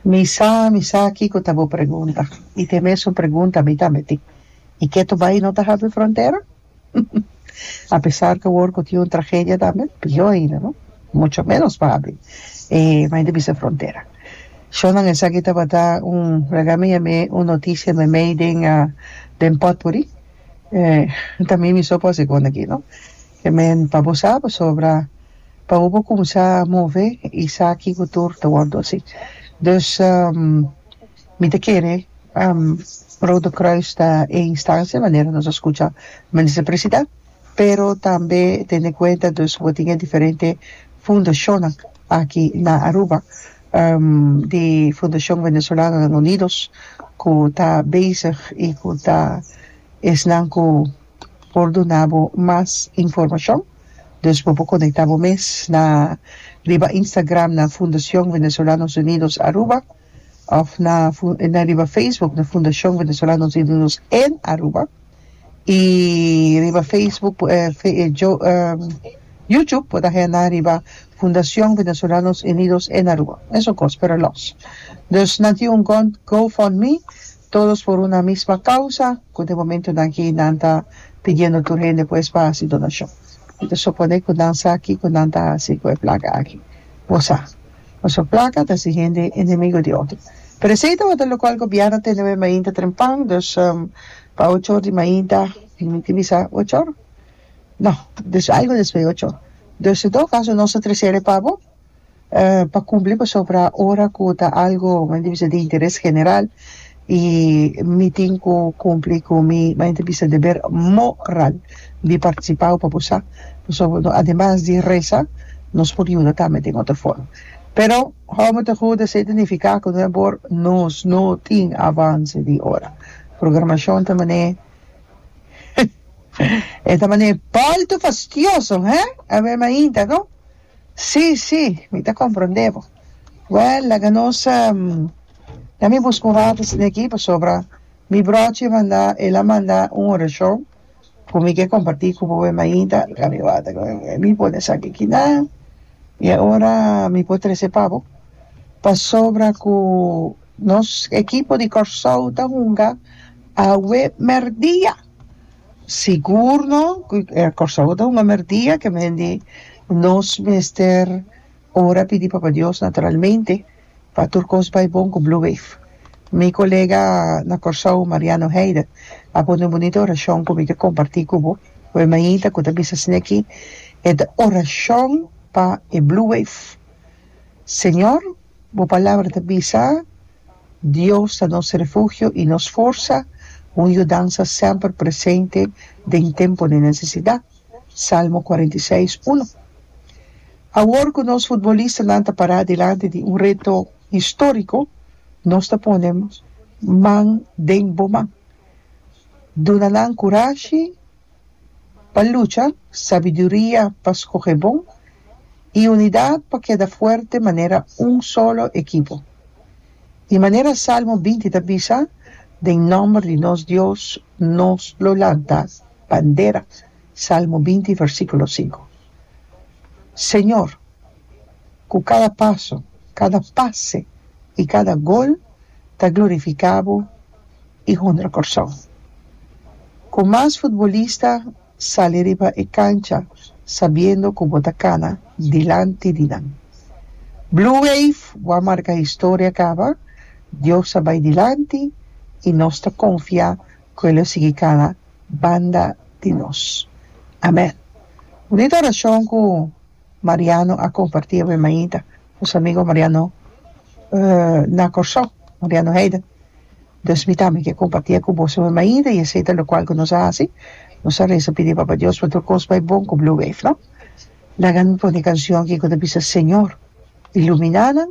Mi sa, mi sa kiko ta bo pregunta. I te mesun pregunta mi tambe tin. I ke to bai no ta habri frontera? A pesar ke wor ku tin un tragedia tambe, pio ainda, no? Mucho menos pa habri e mai di bisha frontera. Shornan esaki tabata un, rega mi yam'é un notisia meimei den, den potpourri. Eh, tambe mi so por a segunda aki, no? Amen pa bo sa pasobra pa bo bo kumsa move isaki ku tur ta wòrdu asi dus mi ta kere Rode Kruis ta e instancia manera nos a skucha Minister Presida pero tambe tendo en kuenta dus bo tin e diferente fundashonnan aki na Aruba di Fundashon Venezolanonan Unidos ku ta bezig i ku ta esnan ku por duna bo mas informashon dus bo por konekta bo mes na riba Instagram na Fundacion Venezolanos Unidos Aruba òf na na riba Facebook na Fundacion Venezolanos Unidos en Aruba i riba Facebook por YouTube por ta henda riba Fundacion Venezolanos Unidos en Aruba esun kos pero lòs dus nan tin un Go Fund Me Todos por una misma causa, cu den momentonan aki nan ta pidiendo tur hende pues pa haci donacion. Mi ta supone cu nan sa kico nan ta haci cu e placa aki. Bo sa. Pasobra placa ta haci hende enemigo di otro. Pero esey tabata locual Gobierno tende me mainta dren pan, dus pa ocho or di mainta, mi tin bisa, ocho or? No, dus algo despues ocho or. Dus si todo caso nos ta trecere pa bo. eh, pa cumpli pasobra ora cu ta algo mi ta bisa di interes general y mi tin cu cumpli cu mi mi ta bisa deber moral di participa o papusa pasobra ademas di resa nos por yuda tambe den otro forma pero how mi ta hopi ta identifica cu no e por nos no tin avance di ora programacion ta mane e ta mane balto fastioso he aver mainta no. Sí, sí, mi ta comprende bo. Wèl, laga nos na mi busca un rato asina aki pasobra mi brochi manda el a manda un oracion cu mi ke comparti cu boe mainta laga mi wak ta cu mi por ta esaki aki na y ahora mi por trece pa bo pasobra cu nos equipo di Kòrsou ta hunga awe merdia. Sigur no cu Curaçao ta un amer dia que mendi nos mester ora pidi Papa Dios naturalmente pa tur cos bay bon cu Blue Wave. Mi colega na Curaçao Mariano Heyder a pone un bunita oracion cu mi ta comparti cu bo cu e mainta cu ta bisa asina aki e ta oracion pa e Blue Wave, Señor, Bo palabra ta bisa, Dios ta nos refugio i nos forsa, un yudansa semper presente den tempo di nesesidat. Salmo kuarenta i seis uno. Awor ku nos futbolistanan ta pará dilanti di un reto históriko, nos ta pone man den bo man. Duna nan kurashi pa lucha, sabiduria pa skohe bon i unidat pa keda fuerte manera un solo ekipo. I manera Salmo binti ta bisa, Den nòmber di nos Dios nos lo lanta bandera, Salmo binti versíkulo sinku. Señor, ku kada paso, kada pase i kada gol ta glorifiká Bo, i Hunter Corsou. Cu mas futbolista sali riba e cancha sabiendo cu bo ta cana dilanti di nan. Blue Wave wou marca historia caba, Dios a bay dilanti i nos ta confia cu e lo sigui cana banda di nos. Amen. Bunita oracion cu Mariano a comparti awe mainta. nos amigo Mariano na Kòrsou Mariano Heiden dus mi tambe ke kompartié ku boso mi mainta i esei ta lokual ku nos a hasi nos a resa pidi Papa Dios pa tur kos bai bon ku Blue Wave no laga mi pone kanshon ki ku ta bisa Señor iluminanan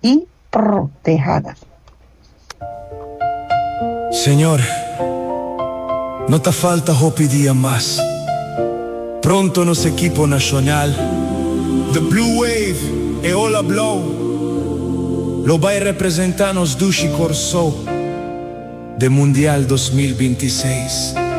i protehanan. Señor, no ta falta hopi dia mas, pronto nos ekipo nashonal, The Blue Wave, e Ola Blou, lo bai representá nos dushi Kòrsou den Mundial dos mil binti seis.